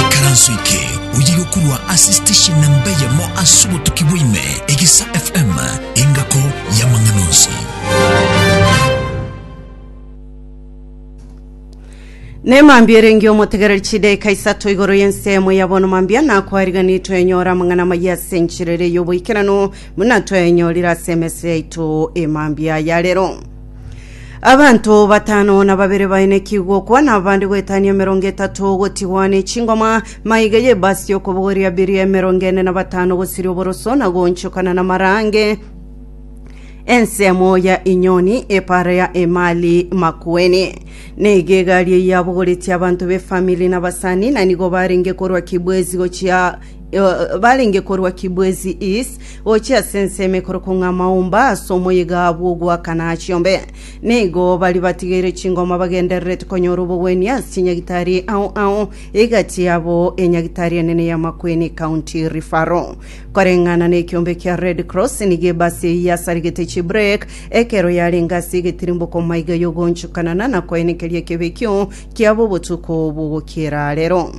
Ikaranso eke oye yokorwa ase station namba eyemo ase obotuki bwaime egisa FM engako y'amang'ana onsi. nemambia erenge omotegereri chideka isato igoro y'ensemo ya bono mambia nakwariganiri twenyora amang'ana amaya ase enchirere y'oboikeranu buna twayanyorire ase emese yaito emambia ya rero Abanto batano na babere bainekigwe okwana, abande goetania emerongo etato gotigwa ne chingoma, maiga y'ebasi y'okobogoria biria emerongo ene na batano gosiria oboroso na goonchokana na marange, ensemo ya inyoni, epaara ya emali makueni. Negegari eyabogoretie abanto b'efamili na abasani, na nigo barenge korwa Kibwezi gochia Ee, barenge korwa Kibwezi East gochia ase ensemo ekorokwa ng'a Maumba ase omoyega bw'ogoakana Achiombe. Nigo baria batigeire chingoma bagendererete konyora obogwenia ase chinyagitari ao ao, egati yabo enyagitari enene ya Makueni County Referral. Koreng'ana n'ekiombe kia Red Cross nigo ebasi eyio yasaregete chibrek ekero yarenge ase egetirimboku maiga y'ogoonchokanana na koenekeria ekebekio kiabo obotuko bw'ogokiera arero.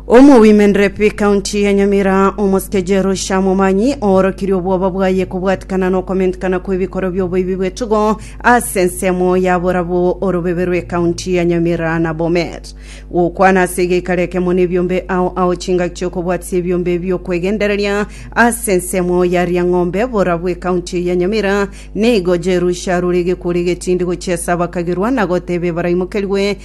Omowimendere pi kaunti ya Nyamira omosike Jerusha Momanyi oorokirie obwoba bwaye kobwatikana nokomentikana kw'ebikoro by'oboibi bw'etugo ase ensemo ya borabwo orobebe rw'ekaunti ya Nyamira na Bomet gokwana ase egeikaro ekemo nebiombe ao ao chingaki chiokobwatisia ebiombe biokwegendereria ase ensemo ya Riang'ombe borabwo ekaunti ya Nyamira nigo Jerusha rore egekuri egetindi gochiesa bakagirwa na goteba ebaraimokerigwe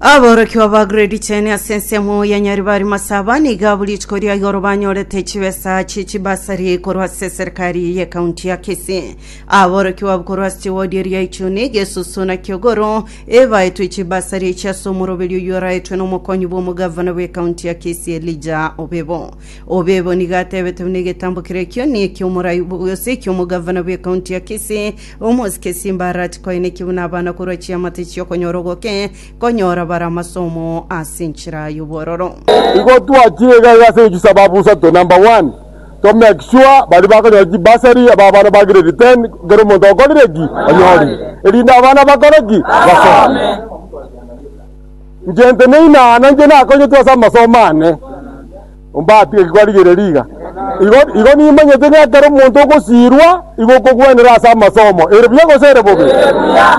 Aborokigwa ba grade cheni ase ensemo ya Nyeri bari masaba niga buri rituko ria igoro banyorete chibesa chie chibasari korwa ase eserikari ye kaunti ya Kisii. Aborokigwa abwo korwa ase chiwodi eria Ichuni, Gesusu na Kiogoro ebaetwe chibasari echi ase omoroberio oyio oraetwe n'omokonyi bw'omogavana bwe kaunti ya Kisii Elijah Obebo. Obebo nigo atebete buna egetambo keria ekio ni eki'omorai gose eki'omogavana bwe kaunti ya Kisii Omosike esimba arache koenekigwe nabana korwa chiamate chi'okonyora ogoke, konyora bare amasomo ase enchera y'obwororo. Igo twachire igaiga ase echisababu isato, number one, to make sure baria bakonyora chibursary aba abana ba grade ten kera omonto okorire ki? Onyori. Erinde abana bakore ki? Basome. Inche nte neina ana inche nakonyetwe ase amasomo ane. Ombatige kibarigererie iga. Igo, igo nimanyete ng'a ekero omonto ogosiirwa igo okogwenera ase amasomo, ere buya gose ere bobe.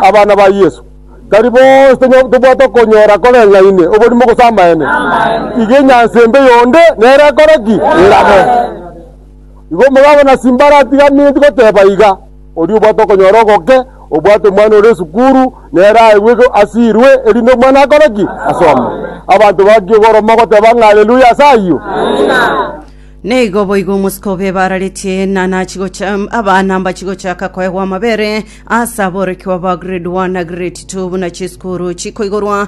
Abana ba Yesu, tari bonsi tonyo- tobwate okonyora koreng'aine oborimo gose amaene. Iga enyansa embe yonde nere ekore ki? Erabe. Igo omogabo na Simbara atiga minti goteba iga. Oria obwate okonyora ogoke, obwate omwana ore esukuru, nere aegwe asirwe, erinde omwana akore ki? Asome. Abanto bakie korwa mogoteba ng'a Aleluya ase ayio. Nigo boigo omosike obe bararetie enana achigocha abana mbachigochaka koegwa amabere ase aborokigwa ba grade 1 na grade 2 buna chisukuru chikoigorwa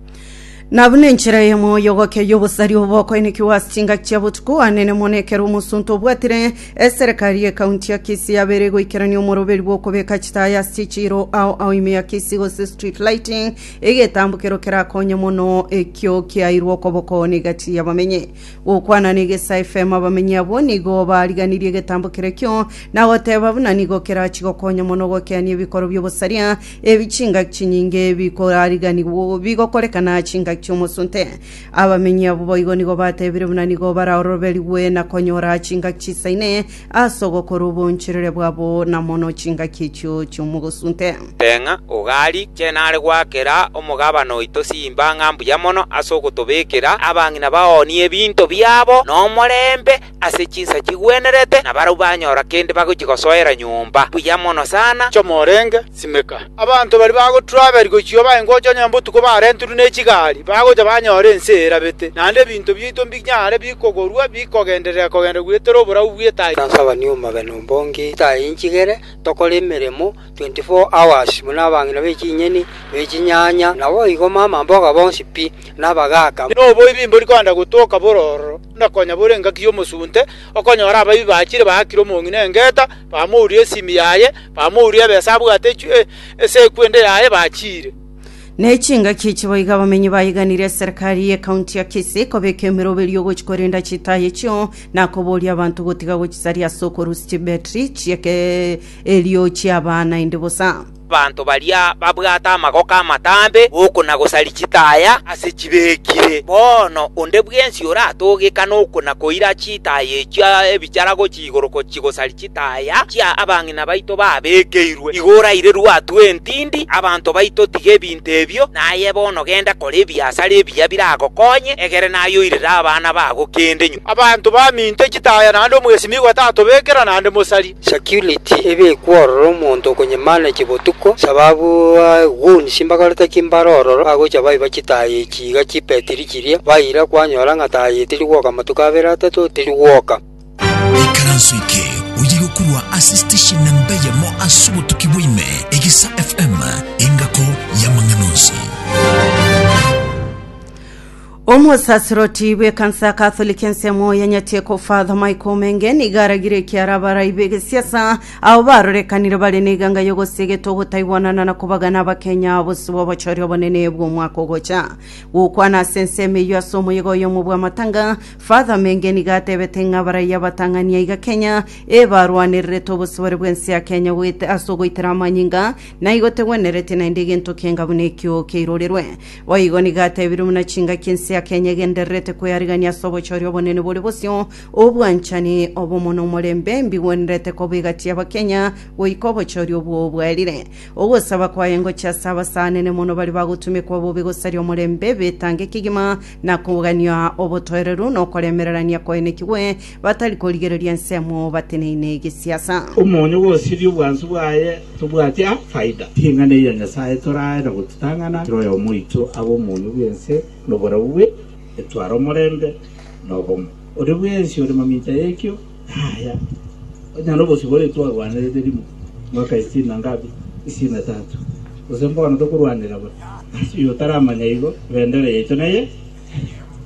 Na buna enchera eyemo y'ogokia y'obosari obo bokoenekigwa ase chingaki chia botuko anene mono ekero omosunte obwatire eserekari y'ekaunti ya Kisii yabeire goikerania omoroberi bw'okobeka chitaaya ase chichiiro ao ao ime ya Kisii gose street lighting egetambukero kerakonye mono ekio kiairwe okoboko na egati y'abamenyi gokwana na egesa FM abamenyi abwo nigo bariganirie egetambukero ekio na goteba buna nigo kerachi gokonya mono gokeania ebikoro by'obosaria Ebi chingaki chinyinge bikorariganigwa bigokorekana chingaki chi'omosunte. Abamenyi abwo boigo nigo batebire buna nigo baraoroberigwe na konyora chingaki chisaine ase ogokora oboncherere bwabo na mono chingaki echio chi'omogosunte. Teng'a ogari chene are goakera omogabane oito simba ng'a mbuya mono ase ogotobekera abang'ina baonie ebinto biabo nomorembe. ase chinsa chigwenerete, na barabwo banyora kende bagochia gosoera nyomba buya mono sana. Choma orenge, simeka. Abanto baria bagotura aberi gochia oba engocha onye botuko barenterwe ne chigari, bagocha banyora ense erabete, naende ebinto biaito mbinyare bikogorwa bikogenderera-kogenderera gweterera oborabu bw'etaichi. Tansabani omobe nombonge etaai inchigere, tokore emeremo 24 hours buna abang'ina be chinyeni, be chinyanya, naboigo mamamboga bonsi pi, na abagaaka. Noboibi mbori kogenda gotoka boro ororo. na konya bore engaki y'omosunte, okonyora abaibwi bachire baakire omong'ina engeta, bamouria esimi yaye, bamouria ebesa abwate echw- e- ase ekwende yaye, bachiire. Ne chingaki echi boigo abamenyi baiganirie eserekari y'Ekaunti ya Kisii kobeka emeroberi ogochi korenda chitaaya echio, na koboria abanto gotiga gochisaria ase okorusia chibetri chi'ekerio chi'abana inde bosa. Abanto baria babwate amagoko amatambe oko na gosari chitaya ase chibekire. Bono onde bwensi oratogeka noko na koira chitaya echio ebichara gochia igoro gochia gosari chitaya chia abang'ina baito babekeirwe, igo oraire rwatwa entindi abanto baito tiga ebinto ebio, naye bono genda kora ebiasara ebiya biragokonye, egere naye oirere abana bago kende nyuma. Abanto baminto chitaya naende omwesimi igo atatobekera naende mosari. Security ebe ekwe ororo omonto okonyemanechia botuko, sababu goons mbagorete ki mbare ororo bagocha baiba chitaaya echi iga chibetiri chiria, baira kwanyora ng'a taaya etiri gwoka amatuko abere atato tiri gwoka. Ikaranso eke oyo igokurwa ase station namba eyemo ase obotuki bwa ime, Egisa FM, engako y'amang'ana onsi. Omosaserdoti bw'ekansa ya Katholiki ensemo ya Nyateko Father Michael Omenge nigo aragire ekiara abarai b'egesiasa abo barorekanire bare n'eganga y'ogosia egete ogotaigwanana na kobagana Abakenya bosibwa obochori obonene bw'omwaka ogocha. Gokwana ase ensemo eyio ase omoyega oyomo bw'amatanga, Father Omenge nigo atebete ng'a abarai abatang'ani aiga Kenya ebarwanererete obosibore bw'ense ya Kenya goet ase ogoitera amanyinga naigo tegwenereti naende egento kienga buna ekio keirorerwe. Boigo nigo atebirie buna chingaki ense ya Kenya egendererete kwearigania ase obochori obonene bore bosio, obwanchani, obomo na omorembe mbigwenerete kobigatia Abakenya goika obochori obwo bwaerire. Ogosaba kwaye ngochia ase abasaanene mono baria bagotumekwa bobe gosaria omorembe b'etange kegima na kogania obotoereru na okoremererania koenekigwe Batari korigereria ensemo bateneine egesiasa. Omonyo bw'osirie obwansu bwaye tobwati a faida. Ring'ana eria Nyasaye torae na gotutang'ana kera oyomo oito abe omonyo bw'ense noboreu bwe etware omorembe na obomo. Oria bwensi ore mamincha y'ekio naya, onye nobosio bore twarwanerete rimo mwaka isitini na ngapi? isitini na tatu, gose mbono tokorwanera bore. Ase oyotaramanya igo, ebendera yaito neye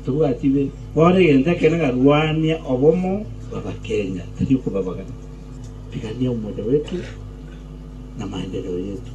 Tobwati be, bono egento ekenene ng'a rwania obomo bw'Abakenya, tari okobabagana. Pigania omoyo oito na maendereo yeito.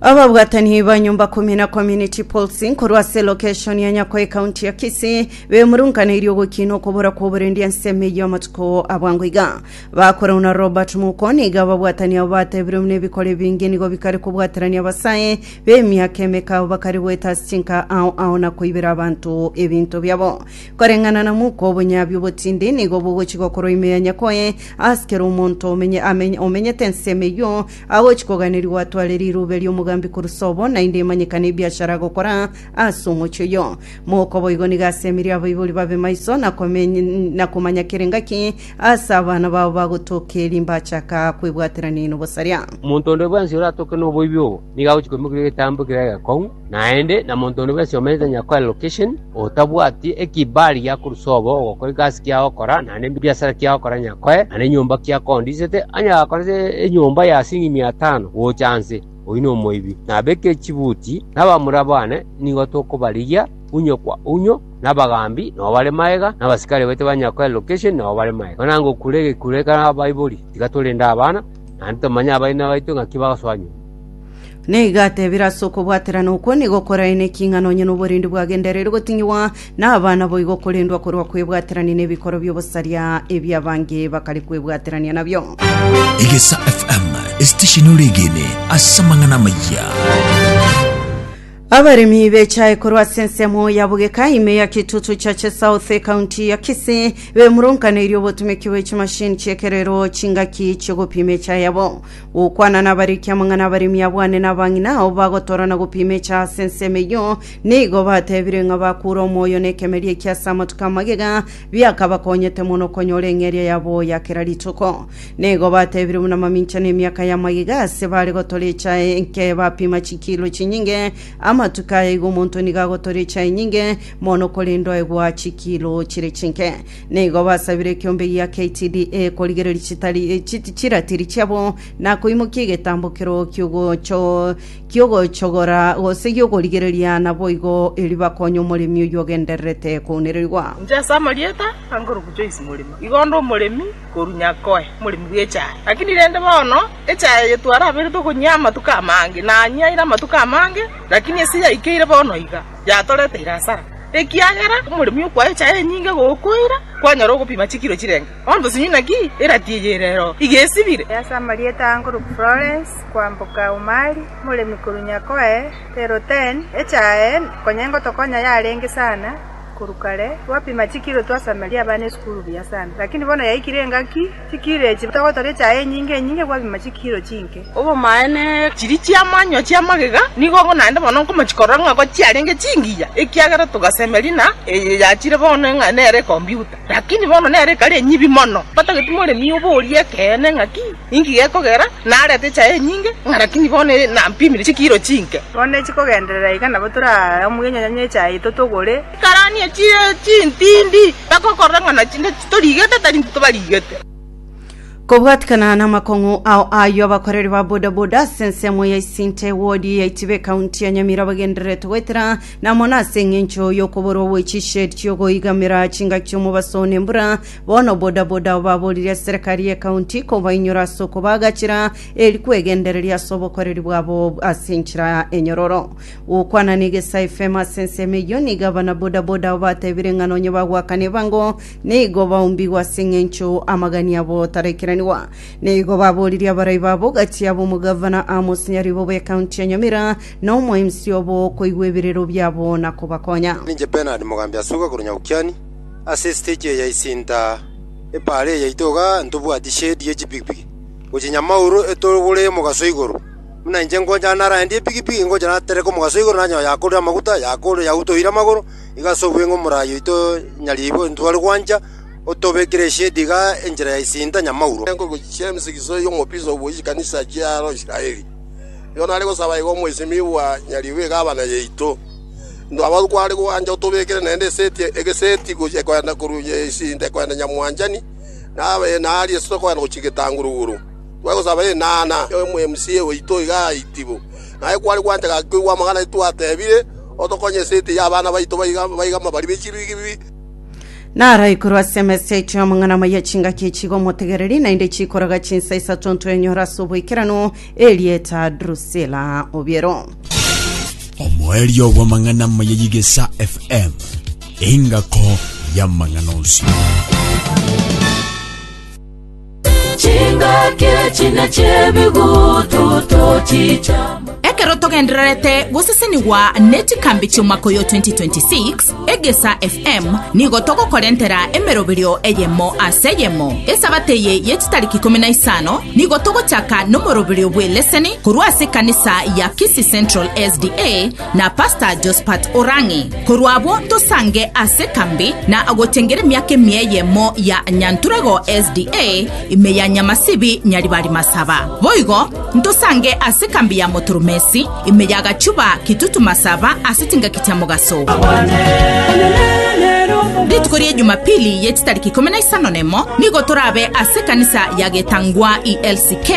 Ababwatani ba nyomba kumi na community policing korwa ase location ya Nyako ecounty ya Kisii bemurunkaneirie ogokina okobora kwa oborendi ense emeyio amatuko abwango iga bakorau na Robert Muko niga ababwatani abo batebirwe buna ebikore ebinge nigo bikare kobwaterania abasae B'emiaka emekao bakare goeta ase chinka ao ao na koibera abanto ebinto biabo. Koreng'ana na moko obonyabi obotindi nigo bogochi gokorwa ime ya nyakoe, ase kera omonto omenye, amenye, omenyete ensemo eyio agochi koganerigwa atware rirube ri'omogambi korwa sobo, naende emanyekane ebiashara agokora ase omochie oyio. Moko boigo nigo asemire abaibori babe maiso na komeny, na komanya kera engaki, Aase abana bao bagotoka eri mbachaka kwebwaterania nobosaria. Omonto onde bwensi oratoke noboibi obo, nigo agochia koimokeria egetambo ekere egekong'u naende, na monto onde bwensi omenyete nonya koa relocation, otabwati ekibali giakorusa obo ogokora egasi kiago ogokora, naende ebiasara kiago ogokora nonya koe, naende enyomba kiakondisete, onye gakora ase enyomba ya siringi mia tano gocha nse, oyio nomoibi. Nabeke chibuti, na abamura bane nigo tokobarigia unyo kwa unyo. Nabagaambi nao bare magega, na abasikari baito ba nyakwa Elokesheni nao bare magega. Mana ngokure egekuro ekero abaibori, tiga torende abana, naende tomanye abaina baito ng'aki bagosoa nyuma. Nigo atebire, Ase okobwaterana okwo nigo okoraenekia ing'ana onye noborendi bwagendereri gotinyigwa, na abana boigo okorendwa korwa kwebwaterania nebikoro bi'obosaria ebi abange bakare kwebwaterania nabio. Egesa FM, esitesheni ore egene ase amang'ana amayia. Abaremi bechae korwa ase ensemo ya bogeka ime ya kitutu cha Chesouth ekaunti ya Kisii bemurunkaneirie obotumeki bwe chimashini chiekerero chingaki chi'ogopima echa yabo. Gokwana nabariki amang'ana abaremi abwane na abang'ina ao bagotora na gopima echa ase ensemo eyio nigo batebire ng'a bakure omoyo na ekemeri ekia ase amatuko amagega biakabakonyete mono konyora eng'eria yabo ya kera rituko. Nigo batebire buna mamincha nemiaka ya magega ase bare gotora echae enke bapima chikilo chinyinge, amatuko aya igo omonto nigo agotora echae enyinge mono korende oegwa chikilo chire chinke. Nigo basabire ekiombe gia KTDA korigereria chitari, eh, chi- chiratiri chiabo na koimokia egetambo kero kiogocho kiogochogora gose giogorigereria naboigo erio bakonye omoremi oyio ogendererete kounererigwa. Inche ase amarieta a Ngoruku Joyce Morima, igo nde omoremi korwa nyakoe moremi bw'echaye. Lakini rende bono echaye eye twaraberete okonyia amatuko amange, nanyiaire amatuko amange, lakini ase yaikeire bono iga, yatoreteire asara, ekiagera omoremi okwaa echaye enyinge gokoira, kwanyora ogopima chikiro chirenge bondo sonye inaki erati eye ere ero iga esibire. Ase amarieta aa nkorokwa Florence, kwamboka Umari, moremi korwa nyakoe Terre-Hautaine, echaye konya engotokonya yarenge sana, Korwa kare gwapima chikiro twasameria abana esukuru buya sana, lakini bono yaikire engaki, chikiro echi togotoria echaye enyinge enyinge gwapima chikiro chinke. Obomaene, chiria chi'amanywa chi'amagega nigo naende bono nkomochia korora ng'a ko chiarenge chingiya, ekiagera togasemeria ng'a eye yachire bono ng'a nere ekombiuta, lakini bono nere ekare enyibi mono. Batagete moremi oborie ekeene ng'aki? Inki gekogera narete echaye enyinge, ng'a rakini bono nampimire chikiro chinke? Bono echikogenderera iga nabo toraamue enyanya y'echaye totogore. Karani echire chintindi, bagokorora ng'a nachinde titorigete tari ntitobarigete. Kobwatikana namakong'u ao ayio abakoreri ba bodaboda ase ensemo ya Isinte ewodi ya Itiba ekaunti ya Nyamira bagendererete goetera namono ase eng'encho yokoborwa gwe chished chiogoigamera chingaki omobaso nembura Bono bodaboda baboririe serikari y'ekaunti kobainyora ase okobaagachera eri kwegendereria ase obokoreri bwabo ase enchera enyororo. Gokwana negesa efemo ase ensemo eyio, nigo abana bodaboda abo batebire ng'a nonye bagoakana ebango nigo baumbigwa ase eng'encho amagani abo taraikiranigwa. Nigo baboririe abarai babo gati yabo omogavana, amosinyaribo bw'ekaunti ya Nyamira na omo-MC obo koigwa ebirero biabo na kobakonya. Ninche Bernard Mogambi Asuga korwa Nyabukiani. Ase esiteji eya isinta epaara eyaito iga ntobwati sheedi ye chipigipigi, gochia nyamauru etogore omogaso igoro. Buna inche ngocha narendie epigipigi, ngocha natereke omogaso igoro nanyora yakorire amaguta, yakorire yautoire amagoro, igo ase obweng'u omorai oito nyaribo ntware gwancha, otobekire esheedi iga enchera ya isinta nyamauro. Nkogochia emisigiso y'omobisa obo chikanisa chiaro Israeli. Yono are gosaba iga omoisimigwa nyaribo egabana yaito. Ntwaba kware gwancha otobekere naende eseti egeseti gochia koenda korwa nyaisinde koenda nyamwanchani, na abene aaria esito koenda gochia getanguruguru. Tware gosaba enana y'omwMC oito iga aitibu. Naye kware gwancha gaki koigwa amang'ana aito atebire, Otokonye eseti y'abana baito baiga baiga mabari be chibigibi. Naraikorwe ase emeseti y'amang'ana amaya chingaki chigomotegereria, naende chikoroga chinsa isato ntwenyora ase oboikeranu, Erieta Drusilla Obiero. Omoerio bw'amang'ana amaya y'Igesa FM, engako y'amang'ana onsi. chingaki chine chebigutu tochichama Ekero togendererete gosesenigwa ne chikambi chi'omwaka oyo 2026, Egesa FM nigo togokorentera emeroberio eyemo ase eyemo. Esabato eye ye chitariki ikomi na isano nigo togochaka nomoroberio bw'eleseni korwa ase ekanisa ya Kisii Central SDA na Pastor Josephat Orang'i. Korwa abwo ntosange ase ekambi na agochengera emiaka emia eyemo ya Nyanturego SDA ime ya Nyamasibi Nyaribari Masaba. Boigo Ntosange ase ekambi ya Motoromesi, ime ya gachuba kitutu masaba ase chingaki chia mogaso. Rituko ria Ejumapili ye chitariki ikomi na isano nemo nigo torabe ase ekanisa ya getangwa ELCK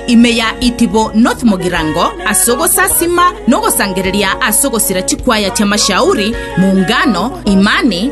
ime ya Itibo North Mogirango ase ogosasima na ogosangereria ase ogosira chikwaya chia Mashauri, Muungano, Imani,